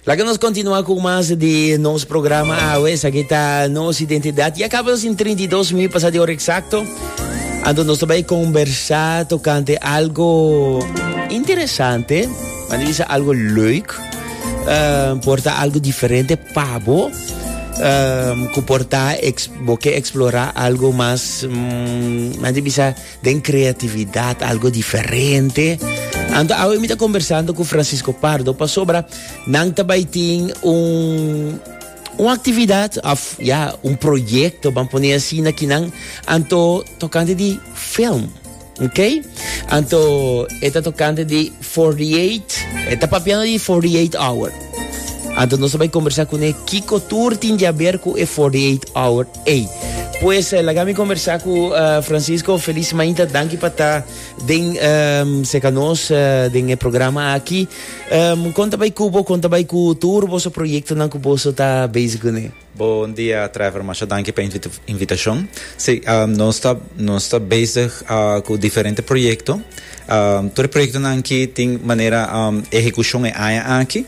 Laga nos continua cu mas di nos programa awe. Esaki ta nos identidad. Ya acaba nos in 32 mil pasa di hora exacto. Ando nos bai conversa tocante algo interesante. Maar die is algo leuk. Uh, porta algo diferente pabo. Um, ku porta ex, boke explora algo mas mm, bisa Den creatividad algo diferente. Anto awe mi ta conversando cu Francisco Pardo pasobra nan ta bay tin un un actividad of ya un proyecto ban pone así na kinan anto tocante di film ok anto eta tocante di 48 eta papiano di 48 hour anto nos bay conversa cune kiko tur tin di haber cu e 48 hour Ey, pues eh, laga mi conversa cu eh, Francisco. Feliz mañana, danki pa ta den ehm, seca nos eh, den e programa aquí. Ehm, conta bij Cubo, conta bij cu tour boso proyecto nan cu boso ta bezig gune. Bon dia Trevor, masha danki pa invita invitacion. Si, ah, nos ta, nos ta bezig ah, cu diferente proyecto. Tur e proyektonan aki tin manera ehekushon e aña aki.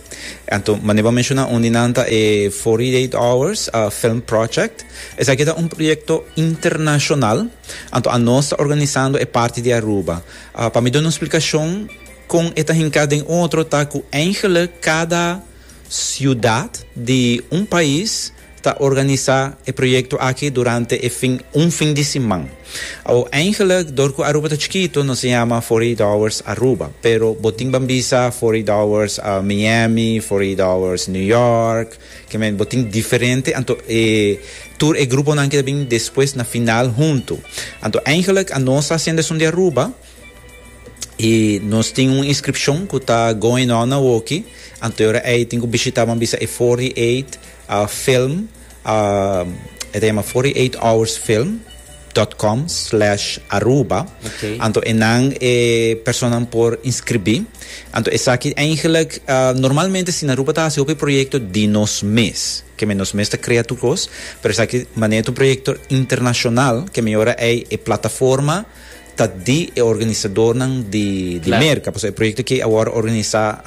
Anto manera bo a menshoná un di nan ta e Forty Eight Hours Film Project. Esaki ta un proyekto internashonal anto anos ta organisando e parti di Aruba. Pa mi duna un splikashon kon e ta hinká den otro ta ku eingelijk kada siudat di un pais. ta organisa e proyecto aki durante e fin un fin di siman. Ao eingelijk dor cu Aruba ta chikito nos a yama Forty Eight Hours Aruba, pero bo tin ban bisa Forty Eight Hours Miami, Forty Eight Hours New York, ke men bo tin diferente anto e tur e gruponan ke ta bin despues na final hunto. Anto eingelijk anos ta haciendo esun di Aruba. y nos tin un inscripcion cu ta going on awoki anteora ey tin cu bishita bo a bisa e 48 ah film ah e ta yama 48 hours film dot com slash aruba Okay. anto enan e personanan por inscribi anto esaki eigenlik ah normalmente si na aruba ta hasi hopi proyecto di nos mes keme nos mes ta crea tur cos pero esaki manera ta un proyecto internacional keme ora ey e plataforma ta di e organisadornan di di Merka, pasobra e proyekto kier awor organisá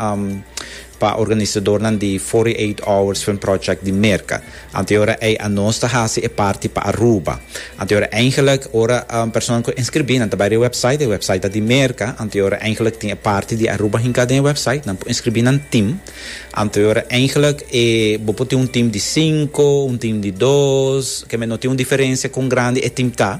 pa organisadornan di Forty Eight Hours Film Project di Merka. Anto yora ei a nos ta hasi e parti pa Aruba. Anto yora eigenlik ora personanan ku a inskribí nan ta bai riba e wèpsait, e wèpsait ta di Merka, anto yora eigenlik tin e parti di Aruba hinká den e wèpsait, nan por inskribí nan tim. Anto yora eigenlik e bo por tin un tim di sinku, un tim di dos, kèn mi no tin un diferensia kon grandi e tim ta.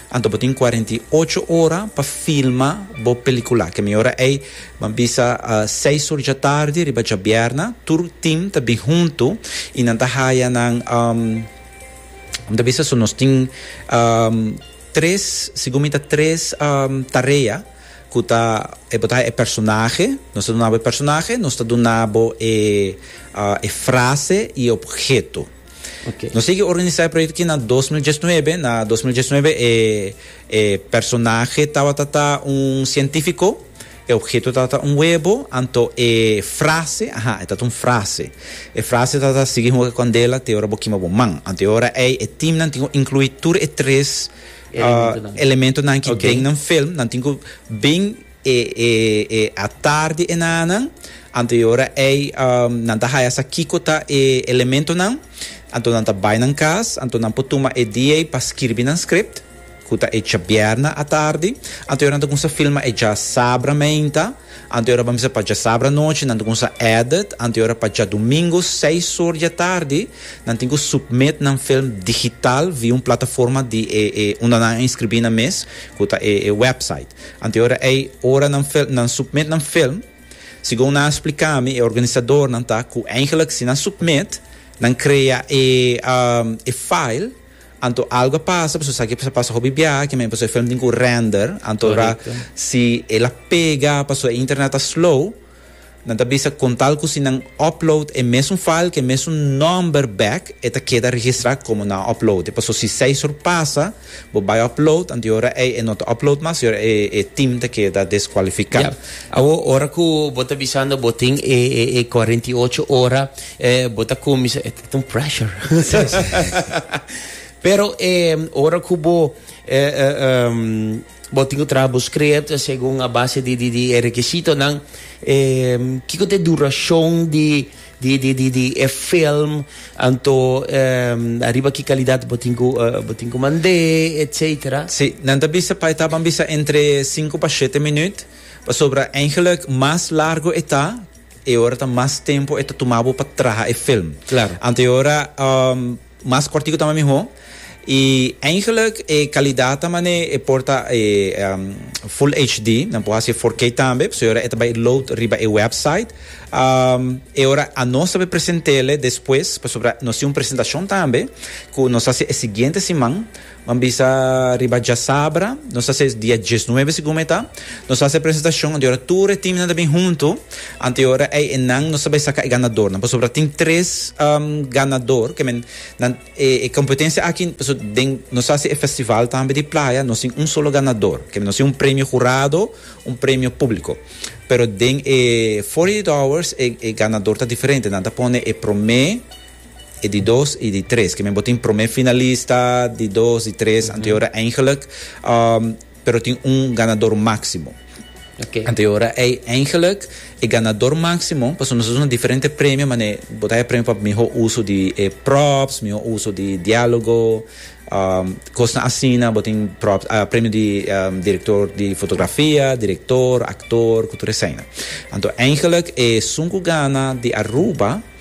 Anto bo tin cuarenta y ocho ora pa filma bo pelicula. Kemi ora ey ban bisa seis ur dja tardi riba djabierna. Tur team ta bin hunto y nan ta haya nan um mi ta bisa so nos tin um tres segun mi ta tres um tarea cu ta ey bo ta haya e personahe, nos ta dunabo e personahe, nos ta dunabo e frase y e obheto. Okay. Nos sigui organisa e proyecto ki na 2019. Na 2019 e, e personaje tabata ta un científico e objeto tata un huevo, anto e frase, aha, e tata un frase. E frase tata sigui hoge candela te ora bokima bo man. Anto e ora ei e team nan tingo inclui tur e tres uh, elemento nan ki okay. den nan film, nan tingo ben E e e atardi e nananan, anto e ora ei, nan ta haya sa kiko ta e elementonan, anto nan ta bai nan kas, anto nan por tuma e di ei pa skirbi nan script, ku ta e djabièrnè atardi, anto e ora nan ta kumsa filma e djasabra meinta, anto e ora pa misa pa djasabra nochi, nan ta kumsa edit, anto e ora pa djadumingu seis or di atardi, nan tin ku submit nan film digital via un plataforma di e e unda nan a inskribí nan mes, ku ta e e website. Anteora ei, ora nan fel, nan submit nan film, segun nan a splica mi, e organisadornan ta cu eigenlijk si nan submit, nan crea e, um, e file, anto algo a pasa, pasobra esaki a bisa pasa hopi biaha aki, pasobra e film tin cu render, anto ra, si el a pega, pasobra e internet ta slow, Nan ta bisa con tal cu si nan upload e mesun file cu e mesun number back e ta keda registra como nan a upload. Paso si seis or pasa bo bay upload anto e ora ey e no ta upload mas y ora ey e team ta keda descualifica. Yep. Awo ora cu bo ta bisando bo tin e e cuarenta y ocho ora eh bo ta cuminsa e ta un pressure. Pero eh ora cu bo eh eh Bo tin cu traha bo script segun a base di, di, di e requisitonan. E, kico ta e duracion di, di, di, di, di e film, anto e, ariba ki calidad bo tin cu, bo tin cu mand'e, etc. Sí, nan ta bisa pa e ta, ban bisa entre sinku pa shete minuut, pasobra eigenlijk mas largo e ta, e ora ta mas tempo e ta tuma bo pa traha e film. Claro. Anto e ora, um. Mas kòrtiku ta mas mihó. I eindelijk e kalidat ta manera e por ta e Full HD. Nan por hasi e four K tambe, pasobra e ora e ta bai load riba e wèpsait. E ora anos ta bai present'é despues, pasobra nos tin un presentashon tambe ku nos hasi e siguiente siman. M'a bisa riba djasabra, nos a ses dia diesnuebe segun mi ta, nos a hasi e presentacion, anto e ora tur e teamnan ta bin hunto, anto e ora ei enan nos a bai saca e ganadornan, pasobra tin tres ganador, ke men nan e e competencia aki, paso den nos a hasi e festival tambe di playa, nos tin un solo ganador, ke nos tin un premio hurado, un premio publico, pero den e forty eight hours e e ganador ta diferente, nan ta pone e prome. E di dos y di tres, kimen bo tin prome finalista, di dos, di tres, anteora eigenlijk, ehm, pero tin un ganador maximo. Okay. Anteora ei eigenlijk e ganador maximo, paso nos usa diferente premio, mane bo ta premio pa miho uso di e props, miho uso di dialogo, ehm, kosnan asina, bo tin props, ah, premio di ehm, director di fotografia, director, actor, ku tur esena. Anto eigenlijk e sunku gana di Aruba,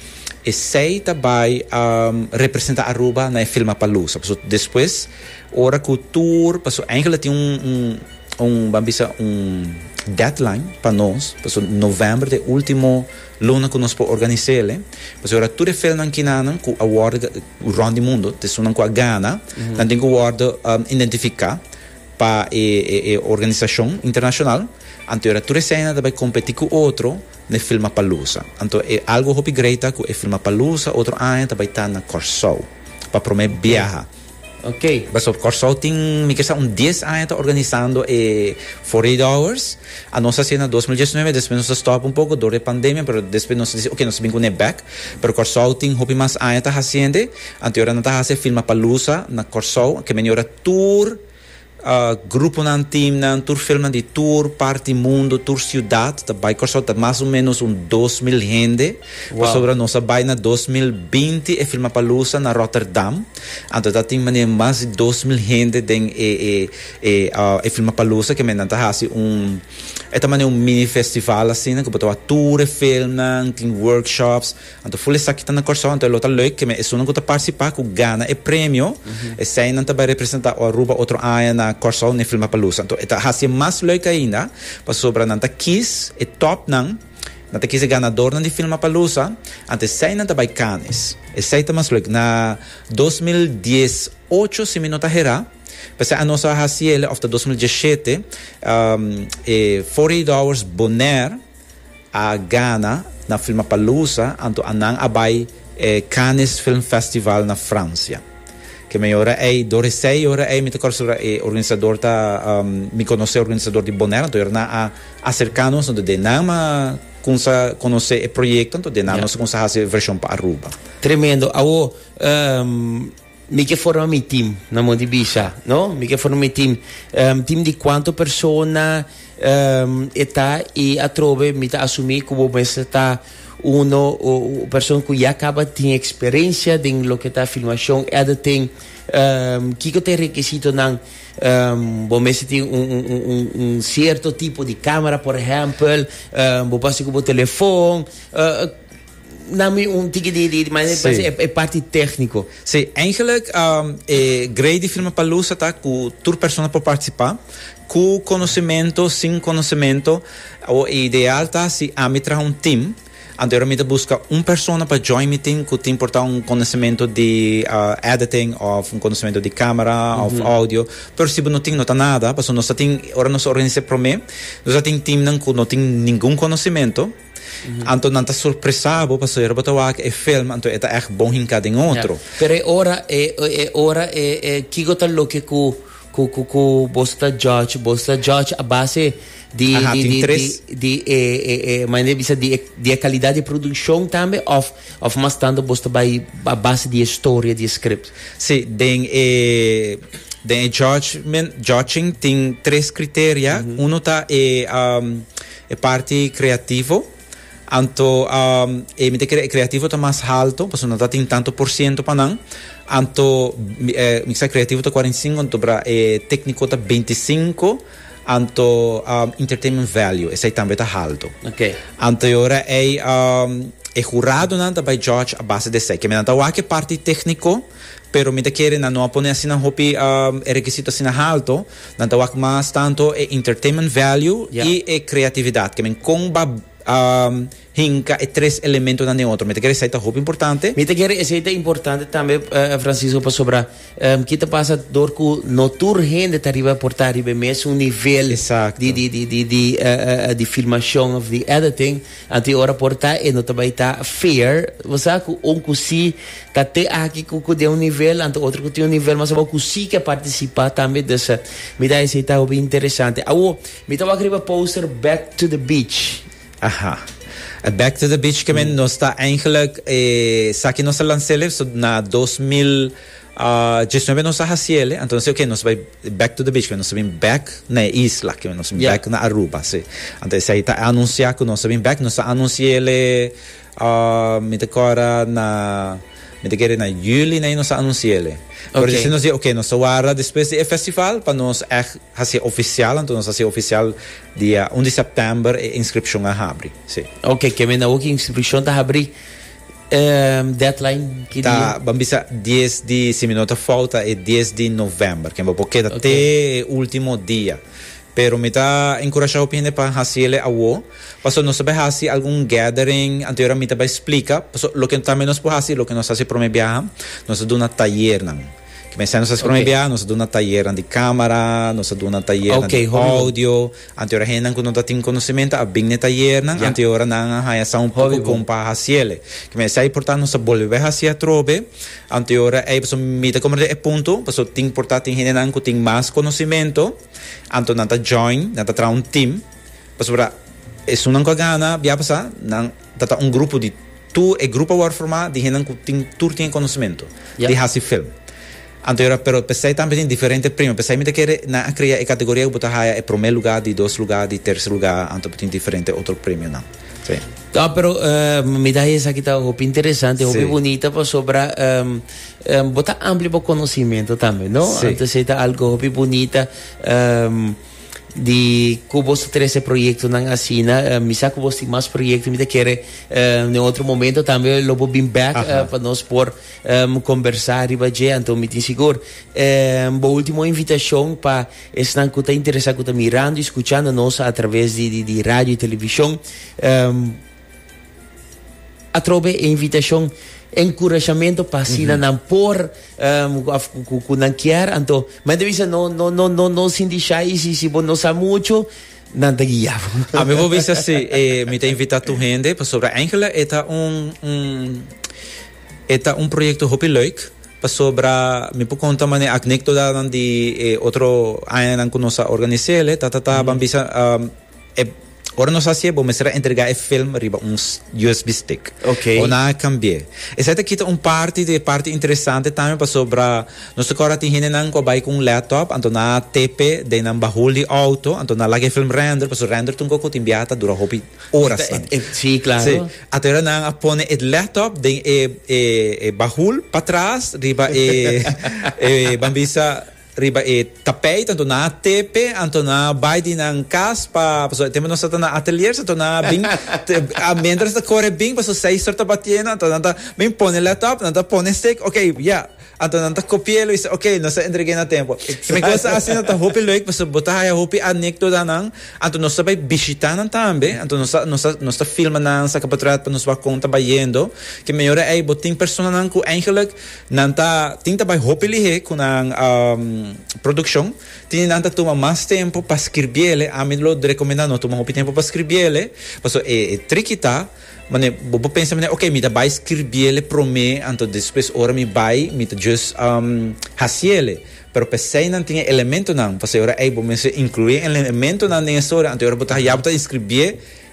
Esey ta bay a representa Aruba na e Filmapalooza paso despues ora cu tur paso eigenlijk tin un un un ban bisa un deadline pa nos paso november ta e ultimo luna cu nos por organizele pasobra ora tur e filmnan kinanan cu a wordo rond di mundo ta esun nan cu a gana nan tin cu wordo identifica pa e e e organisacion internacional anto ora tur eseynan ta bay competi cu otro n'e Filmapalooza. Anto e algo hopi greita ku e Filmapalooza otro aña ta bai ta na Kòrsou pa promé biaha. Pasó Kòrsou tin mi ke sa un dies aña ta organisando e Forty Eight Hours. A nos a hasié na dos mil diesnove despues nos a stòp un poko dor di e pandemia pero despues nos a disi oke nos ta bin kuné bèk. Pero Kòrsou tin hopi mas aña ta hasiende. Anto e ora nan ta hasi e Filmapalooza na Kòrsou ke men e ora tur. Gruponan, teamnan, tur filmnan di tur part di mundo, tur ciudad ta bay Corsou. Ta mas o menos un dos mil hende pasobra nos a bay na dos mil binti e filma palusa na Rotterdam. Anto ta tin manera mas di dos mil hende den e e e e filma palusa ke mennan ta hasi un e ta manera un mini festival asina ku bo ta wak tur e filmnan, tin workshops. Anto ful esaki ta na Kòrsou, anto e lo ta leuk keme esunnan ku ta partisipá ku gana e premio. Eseinan ta bai representá Aruba otro aña na Kòrsou n'e Filmapalusa. Anto e ta hasi e mas leuk ainda pasobra nan ta kis e tòpnan, nan ta kis e ganadornan di Filmapalusa, anto eseinan ta bai Cannes. Esei ta mas leuk. Na dos mil dies ocho si mi no ta herá, p'esei a nos a hasi el òf ta dos mil diesh shete, e Forty Eight Hours Bonaire. a gana na Filmapalooza anto a nan a bai e Cannes Film Festival na Francia. Ke mei ora ei, door esei ora ei mi ta kòrsora e organisador ta mi konosé organisador di Bonaire anto ora nan a aserká nos anto den nan a kumsa konosé e proyekto anto den nan nos a kumsa hasi e vershon pa Aruba. Tremendo, awo. Mi ke forma mi team na mon di bisha no mi ke forma mi team em team di cuanto persona em e ta y atrobe mi ta asumi cu bo mester ta uno o o person cu ya caba tin experiencia den loke ta filmacion editing em kiko ta e requisitonan em bo mester tin un un un un un cierto tipo di camera por ehempel em bo basi cu bo telefon eh Nami un tiki di di manera di pensa e parti tecnico. Sí, eigenlijk e grey di firma Palusa ta cu tur persona por participa, cu conocimento, sin conocimento, o e ideal ta si ami traha un team, anto e mi ta busca un persona pa join mi team cu tin por ta un conocimento di editing of un conocimento di camera of audio, pero si bo no tin no ta nada, pasobra nos ta tin, ora nos organiza e prome, nos a tin teamnan cu no tin ningun conocimento. Anto nan ta sorpresa bo paso ora bo ta wak e film anto e ta echt bon hinka den otro. Ja. Pero e ora e e ora e e kiko ta loke ku ku ku ku boso ta judge boso ta judge a base di Aha, di tin di tres. di di e e e manera di bisa di e di e kalidad di e produkshon tambe of of mas tanto boso ta bai a base di e storia di e script? Si, den e den e judgement judging tin tres kriteria. Uno ta e am E parti creativo, anto e mi ta kere e creativo ta mas halto, pasobra no ta tin tanto por ciento pa nan, anto mi kisa creativo ta cuarenta y cinco, anto bra e tecnico ta beinti y cinco, anto entertainment value esai tambe ta halto. Okay. Anto e ora ei e huradonan ta bay judge a base di esai. Kende nan ta wak e parti tecnico. Pero mi ta kere nan no a pone asina hopi e rekisito asina halto, nan ta wak mas tanto e entertainment value i e kreatividat, ke men kon ba hinka e tres elementonan den otro. Mi ta kere esei ta hopi importante. Mi ta kere esei ta importante tambe, Francisco, pasobra ki ta pasa dor ku no tur hende ta riba por ta riba e mesun nivel di filmashon òf di editing. Anto e ora por ta e no ta bai ta fair. Bo sa cu un cu si ta te aki cu cu den un nivel, anto otro cu tin un nivel mas abao cu si ke participa tambe. Dus mi ta esey ta hopi interesante. Awo, mi ta wak riba poster Back to the Beach. Aha. E Back to the Beach ke men nos ta eindelijk, esaki nos a lans'elef so na dos mil. Djes nuebe nos a haciele, anto nos oke nos bai back to the beach, cu nos ta bin back na e isla, cu nos ta bin back na Aruba, si. Anto esei ta anuncia cu nos ta bin back, nos a anunciele mi ta corda na mi ta kere na juli na ahi nos a anunciele, pero dje si nos di oke nos ta warda despues di e festival pa nos echt haci oficial, anto nos haci oficial dia un di september e inscripcion a habri, si. Oke, kier mi na hopi inscripcion ta habri. deadline ki dia? Ta, ban bisa dies di, si mi no ta fouta, e dies di november, ke bo por keda te e ultimo dia. Pero mi ta enkurashá hopi hende pa hasi ele awo, pasobra nos ta bai hasi algun gathering, anterior a mi ta bai splika, paso loke tambe nos por hasi, loke nos hasi prome biaha, nos ta duna tayernan, ke mester nos hasi prome biaha, nos ta duna tayernan di kámara, nos ta duna tayernan di oudio, Anti ora hendenan ku no ta tin konosementu a bin na e tayernan, anti ora nan a haña sa un poko kon pa hasiel. Kima esa importante nos ta bolbe bai hasi atrobe anti ora ei. Pasobra mi ta komprendé e punto, pasobra tin por ta tin hendenan ku tin mas konosementu, anto nan ta join, nan ta traha un tim, pasobra esunnan ku a gana bia pasá, nan. Ta ta un grupo di tu e grupo a wòrdu formá di hendenan ku tin tur tin e konosementu di hasi film anto yora pero p'esei tambe tin diferente premio p'esei mi ta kere nan a krea e kategoria ku bo ta haya e promé lugá di dos lugá di terse lugá anto bo tin diferente otro premionan sí. Ta pero mi ta haya esaki ta hopi interesante hopi bunita pasobra bo ta amplia bo konosementu tambe no anto esei ta algu hopi bunita. Di cu boso trece proyectonan asina. Uh, mi sa cu bos tin mas proyecto. Mi ta kere uh, den otro momento tambe lo bo bin back uh, Aha. pa nos por um, conversa riba dje. Anto mi tin sigur. Um, bo ultimo invitacion pa esnan cu ta interesa, cu ta mirando y scuchando nos a traves di, di, di radio y television. Um, Atrobe e invitashon, e nkurashamentu pa asina nan por of ku nan kier. Anto men ta bisa no no no no no sinti shai i si si bo no sa muchu nan ta guia bo. A mi bo bisa si e mi ta invitá tur hende pasobra Angela e ta un un e ta un proyekto hopi leuk pasobra mi por konta mane aknektodanan di e otro añanan ku nos a organis'é tatatá ban bisa. E Ora nos hasié bo mester a entregá e film riba un USB stick. Ok. Ora nan a cambié. Esei ta kita un parti di e parti interesante tambe pasobra nos ta cora tin hendenan cu a bai cu un laptop anto nan a tepe den nan bahul di auto anto nan a laga e film render pasobra render tun coco tin biaha ta dura hopi horasnan. Sí, claro. Sí. Aterra nan a pone e laptop den e e e bahul patras riba e e bambisa Riba e tapijt anto nan a tepe, anto nan a bai di nan cas pa, pasobra e tempo nos a ta na ateliers, anto nan a bin, a mientras ta core bin, pasobra seis tur ta batiendo, anto nan ta bin pone let up, nan ta pone stick, ok, ya, anto nan ta copi'e lo y sa, ok, nos ta entreg'e na tempo. Mi cosa asina ta hopi leuk, pasobra bo ta haya hopi anecdotanan, anto nos ta bai bishita nan tambe, anto nos ta, nos ta, nos ta filma nan, saca portret pa nos wak con ta bayendo, ke mejor ei bo tin personanan cu eigenlijk, Nan ta tin ta bai hopi lihé ku nan produkshon. Tin di nan ta tuma mas tempu pa skirbí el'e. Ami lo rekomendá no tuma hopi tempu pa skirbí el'e. Paso e triki ta, manera, bo por pensa manera, ok, mi ta bai skirbí el'e promé, anto despues ora mi bai, mi ta just hasi el'e. Pero p'esei nan tin e elementonan, pasobra ei bo mester inkluí e elementonan den e storia, anto e ora bo ta haya bo ta eskribí e.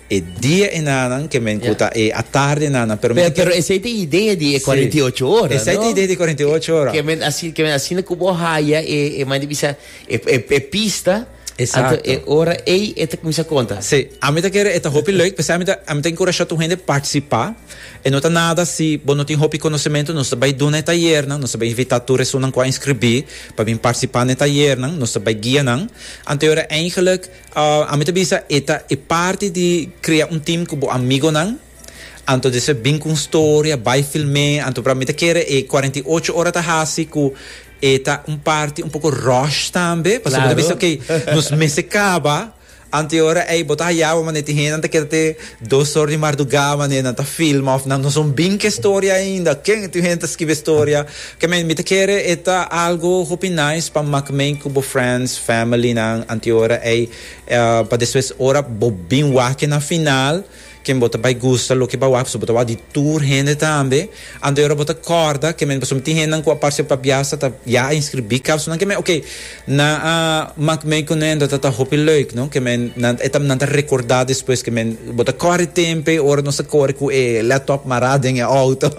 E dia e nanan ke men ku ta e atarde nanan pero men Pero esei ta e idea di e cuarenta y ocho ora, no? Esei ta e idea di cuarenta y ocho ora. Ke men asina ke men asina ku bo haya e e mane ta bisa e e pista Exacto. anto e ora ei e ta kuminsá konta. Sí, ami ta kere e ta hopi leuk p'esei ami ta ami ta enkurashá tur hende partisipá. E no ta nada si bo no tin hopi konosementu, nos ta bai duna e tayernan, nos ta bai invitá tur esunnan ku a inskribí pa bin partisipá n'e tayernan, nos ta bai guia nan. Anto e ora eingelek. Ami ta bisa e ta e parti di krea un team ku bo amigonan. Anto di esei bin ku un storia, bai film'é, anto pra mi ta kere e cuarenta y ocho ora ta hasi ku e ta un parti un poko rush tambe, pasobra bo ta Claro. bisa, ok, nos mester kaba anteora ei, bo ta haya bo manera tin hendenan ta kere te Dos or di mardugá wanneer nan ta filma of nan no son bin ke storia ainda ken ti hende ta skibi e storia ke mi mi ta kere e ta algo hopi nice pa mak meen ku bo friends family nan antiora ei pa despues ora bo bin wak ke na final ken bo ta bai gusta loke bo wak pasobra bo ta wak di tur hende tambe. Anto yora bo ta kòrda kemen pasobra tin hendenan ku a parse pabiasa ta ya a inskribí kaus nan kemen okay nan a mak mei kuné anto ta ta hopi lèuk no kemen nan e ta nan ta rekordá despues kemen bo ta kòrre tempe ora nos ta kore ku e lèptòp mará den e outo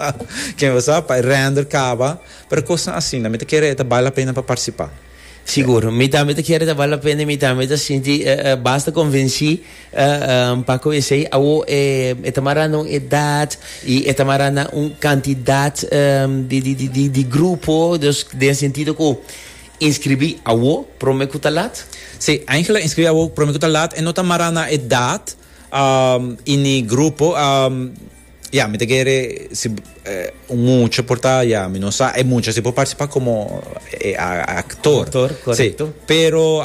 kemen bo sa pa e rènder kaba pero kosnan asina mi ta kere e ta bale la pena pa parsipá. Sigur. Mi tambe ta kere ta bal la pena y mi tambe ta sinti basta convenci pa cu esey awo e ta mara na un edad y e ta mara na un cantidad di grupo, dus den sentido cu inscribi awo prome cu ta laat? Si, Angela, inscribi awo prome cu ta laat. E no ta mara na edad y ni grupo. Ya, mi ta kere si un mucha por ta, ya, mi no sa, e mucha si por participa como e actor. Actor, correcto. Si, pero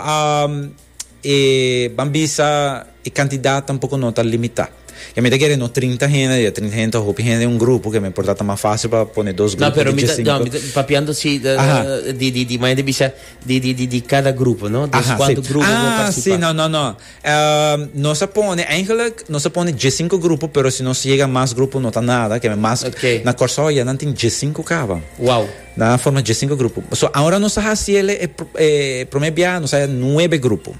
e ban bisa e cantidad tampoco no ta limita. Ya mi ta kere no trinta hende, ya trinta hende ta hopi hende en un grupo, keme por ta ta mas facil pa pone dos No, grupos pero di mi ta, dje no, sinku. mi ta papiando si Aha. di, di, di, maya di bisa di, di, di, di cada grupo, no? Des Aha, cuanto si. grupo por Ah, si, participa. no, no, no. Nos a pone, eigenlijk, nos a pone djesinku grupo, pero si nos yega mas grupo no ta nada, keme mas, na Kòrsou aye nan tin djesinku kaba. Wou. Nan a forma djesinku grupo. So, awor nos a hasi el e promé biaha, nos a yega nuebe grupo.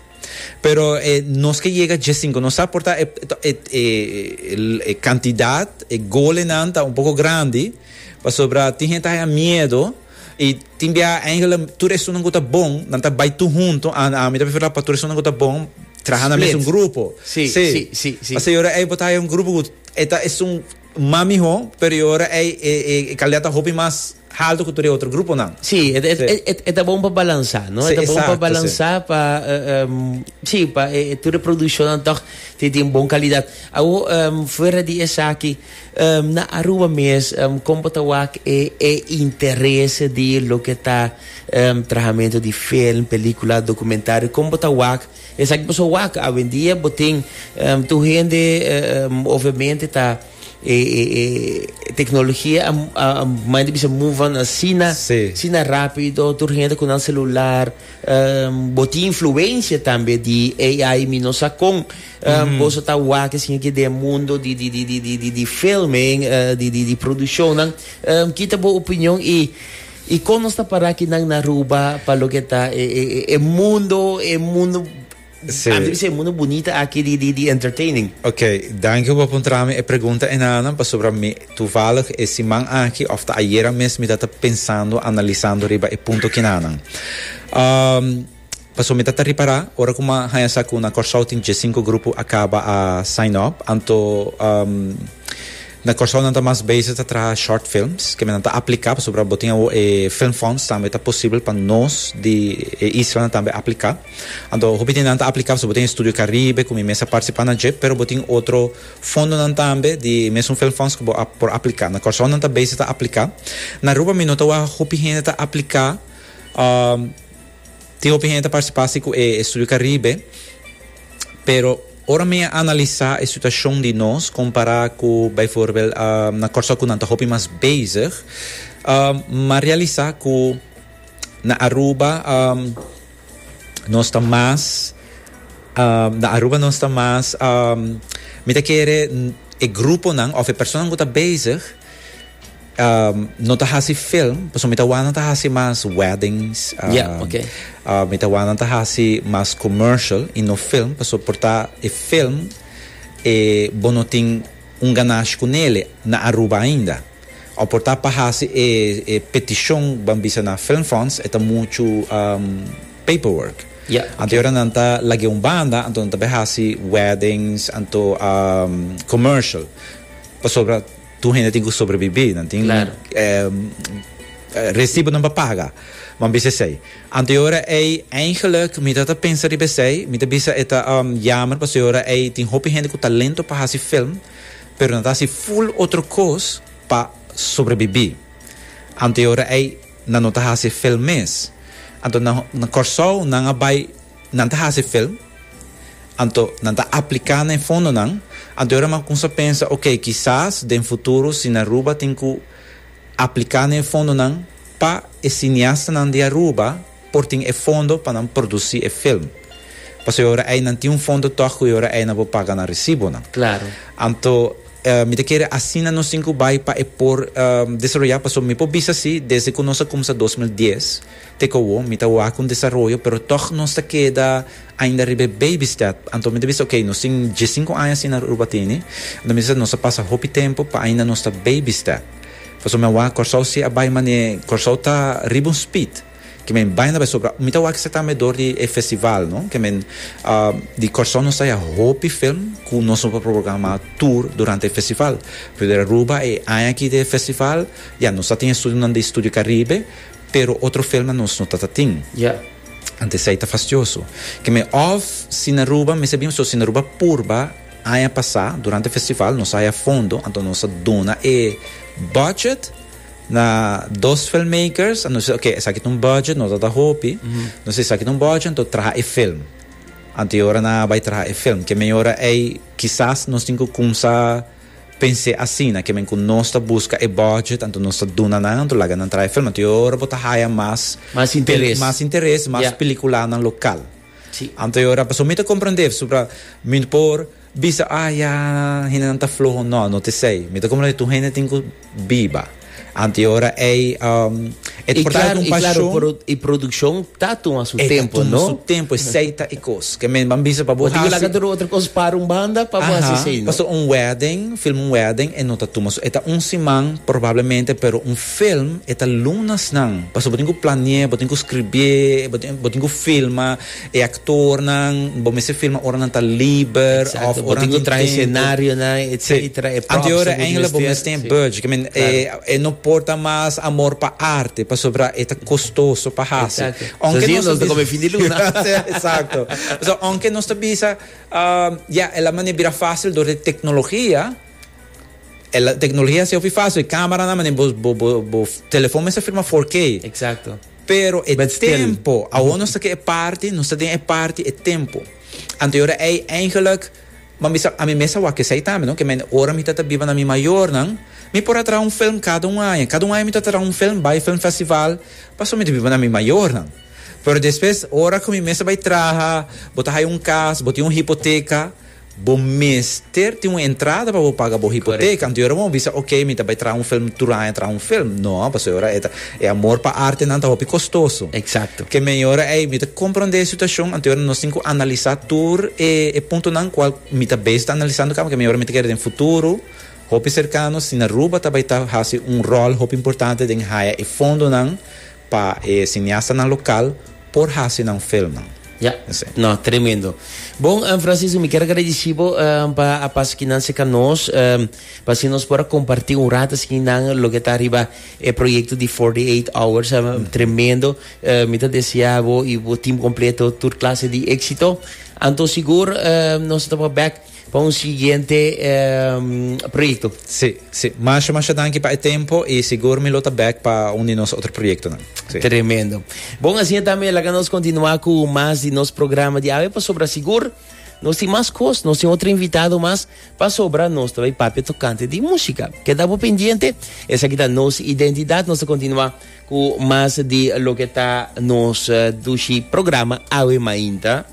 Pero e nos ke yega djesinku, nos sa porta e, e kantidat, e golenan ta un poko grandi, pasobra tin hende ta haña miedo, I tin bia eigenlijk tur esunnan ku ta bon, nan ta bai tur huntu. A a mi ta preferá pa tur esunnan ku ta bon traha na mesun Split. grupo. Sí, Sí. sí, sí, sí. Pasobra e ora ei bo ta haya un grupo ku e ta esun mas mihó, pero e ora ei e e e kalidad ta hopi mas haltu ku tur e otro gruponan. Sí, e e Sí. e e ta bon pa balansá, no? Sí, E ta bon pa exacto, sí. balansá pa eh, em, sí, pa e e tur e produkshonnan tòg tin tin bon kalidad. Awo, em, fuera di esaki, Na Aruba mes, kon bo ta wak e e interese di loke ta trahamentu di film, pelikula, dokumentario? Kon bo ta wak esaki bo so wak? Awendia bo tin tur hende ovemente ta e e teknologia a manda bisa mova asina asina rápido, tur hende ku nan selular. Bo tin influensia tambe di AI mi no sa kon. Boso ta wak esei aki den e mundo di di di di di di filming, eh, di di di produccionnan. Em, Kita bo opinion i i kon nos ta para aki nan na Aruba pa loke ta e e e e mundo, e mundo, Sí. a bisa e mundo bunita aki di di di entertaining. Ok, danki bo puntra mi e pregunta enanan pasobra mi tuvallig e siman aki of ta ayera mes mi ta ta pensando, analisando riba e punto kinanan. Ehm, Pasobra mi ta ta ripará, ora ku mi a haña sa ku na Kòrsou tin dje sinku grupo a kaba a sign up, anto na Kòrsou nan ta mas bezig ta traha short films, ke mendan ta apliká, pasobra bo tin awo e film funds tambe ta posibel pa nos di e islanan tambe apliká. Anto hopi di nan ta apliká pasobra bo tin e Studio Caribe ku mi mes a partisipá na dje, pero bo tin otro fondonan tambe di e mesun film funds ku bo a por apliká. Na Kòrsou nan ta bezig ta apliká. Na Aruba mi nota awor hopi hende ta apliká. Tin hopi hende ta participa si cu e estudio Caribe, pero ora mi a analisa e situacion di nos compara cu bijvoorbeeld na Corso cu nan ta hopi mas bezig, m'a realisa cu na Aruba nos ta mas, na Aruba nos ta mas, mi ta kere e gruponan of e personanan cu ta bezig, No ta hasi film pasobra mi ta wak nan ta hasi mas weddings mi ta wak nan ta hasi mas commercial y no film pasobra por ta e film e bo no tin un ganash cu nele na Aruba ainda o por ta pa hasi e peticion ban bisa na film funds e ta mucho paper work anto e ora nan ta lag'e un banda anto nan ta bay hasi weddings anto commercial pasobra Tur hende tin cu sobrebibi, nan tin recibonan pa paga, bo a bisa esey. Anto e ora ey, eigenlijk, mi ta ta pensa riba esey, mi ta bisa e ta jammer pasobra e ora ey tin hopi hende cu talento pa haci film, pero nan ta haci full otro cos pa sobrebibi. Anto e ora ey nan no ta haci film mes. Anto na Corsou nan a bay Nan ta hasi film, anto nan ta apliká na e fondonan, anto e ora nan kumsa pensa, ok, kisas den futuro si na Aruba tin ku apliká na e fondonan pa e siniastanan di Aruba por tin e fondo pa nan produsí e film. Paso e ora ei nan tin un fondo tòg ku e ora ei nan por paga nan resibonan. Klaro. Anto mi ta kere asina nos tin ku bai pa e por desaroyá. Paso mi por bisa sí, desde ku nos a kumsa dos mil dies Te kowo, mi ta wak un desaroyo, pero tog nos ta keda ainda riba e baby step. Anto mi ta bisa, ok, nos tin die sinku aña asina Aruba tini, anto mi ta bisa nos a pasa hopi tempu pa ainda nos ta baby step. Pasobra mi a wak Kòrsou si a bai manera, Kòrsou ta riba un speed, ke men bai na bai. Sobra mi ta wak esaki tambe dor di e festival, no? Ke men di Kòrsou nos ta haya hopi film ku nos no por programa tur durante e festival. Pero di Aruba e aña aki di e festival, ya, nos a tin e studionan di Studio Caribe. Pero otro felnan nos no ta ta tin. Ya. Ante esei ta fastioso. Kem'e of Sinaruba, mester bira so Sinaruba purba aña pasá durante festival nos haya fondo anto nos a duna e budget na dos filmmakers a nos bisa oke esaki ta un budget no ta ta hopi nos bisa esaki ta un budget anto traha e film anto e ora nan a bai traha e film kem'e ora ei kisas nos tin ku kumsa Pens'é asina, kimen ku nos ta buska e bòdjet, anto nos ta duna nan, anto laga nan traha e film. Anto e ora bo ta haya mas pelis, mas interes, mas pelikulanan lokal. Anto e ora, pasobra mi ta komprendé, supra, mi no por bisa, ah ya, hendenan ta floho. No, no t'esei. Mi ta komprendé tur hende tin ku. biba. Anto e ora ei e ta por traha un pashon. I produkshon ta tuma su tempu, no? E ta tuma su tempu, e seita e kos. Ke men ban bisa pa bo hasi. Bo tin ku laga tur otro kos para un banda pa bo hasi esei, no? Pasobra un wedding, filma un wedding e no ta tuma su. E ta un siman probablemente, pero un film e ta lunasnan. Pasobra bo tin ku plane'é, bo tin ku scribié, bo tin ku filma. E actornan, bo mester filma ora nan ta liber of ora nan tin tempo. Exacto, bo tin cu traha e scenarionan, etcetera, e props ta Anteora good engelan bo mester mester tin budget, I mean, e e no por ta mas amor pa arte, pasobra e ta costoso pa haci. Exacto. Aunke Zoals nos ta hier nos ta bisa, come fin di luna. Así es, exacto. Pasobra aunke nos ta bisa, um, ya, el a mane bira facil dor di tecnologia, el a, tecnologia a haci hopi facil, camaranan a mane, bo, bo, bo, bo telefon mester firma 4K. Exacto. Pero e tempo, awor nos ta ke e parti, nos ta den e parti e tempo. Anto ora ei eigenlik, bo mi sa, ami mes a wak esei tambe, no? Ke mi ora mi ta ta biba na mi mayornan, mi por a traha un film kada un aña. Kada un aña mi ta traha un film, bai film festival, pasobra mi ta biba na mi mayornan. Pero despues, ora ku mi mes a bai traha, bo ta haya un kas, bo tin un hipoteka. Bo mester tin un entrada pa bo paga bo hipoteka. Anto e ora bo a bisa, ok, mi ta bai traha un film tur aña traha un film. No, pasobra e ora e ta, e amor pa artenan ta hopi kostoso. Ke men e ora ei, mi ta komprondé e situashon, anto e ora nos tin ku analisá tur e puntonan kual mi ta bes ta analisando ka, pasobra men e ora mi ta kere den futuro hopi serkano, si Aruba ta bai ta hasi un ròl hopi importante den haya e fondonan. Pa e siniastanan lokal por hasi nan filmnan. Ya. No, tremendo. Bon, Francisco, mi kier a agradeci bo pa a pasa aki nan cerca nos, pa así nos por a comparti un rato así ki nan loke ta riba e proyecto di Forty Eight Hours. Tremendo. Mi ta desea bo y bo team completo tur clase di exito. Anto sigur nos ta tabao bek. Pa un siguiente proyecto. Si, si. Masha, masha danki pa e tempo y sigur mi lo ta back pa un di nos otro proyectonan. Si. Tremendo. Bon, asina tambe laga nos continua cu mas di nos programa di awe pasobra sigur nos tin mas cos, nos tin otro invitado mas pasobra nos ta bay papia tocante di musica. Keda bo pendiente, esaki ta nos identidad, nos ta continua cu mas di loke ta nos dushi programa awe mainta.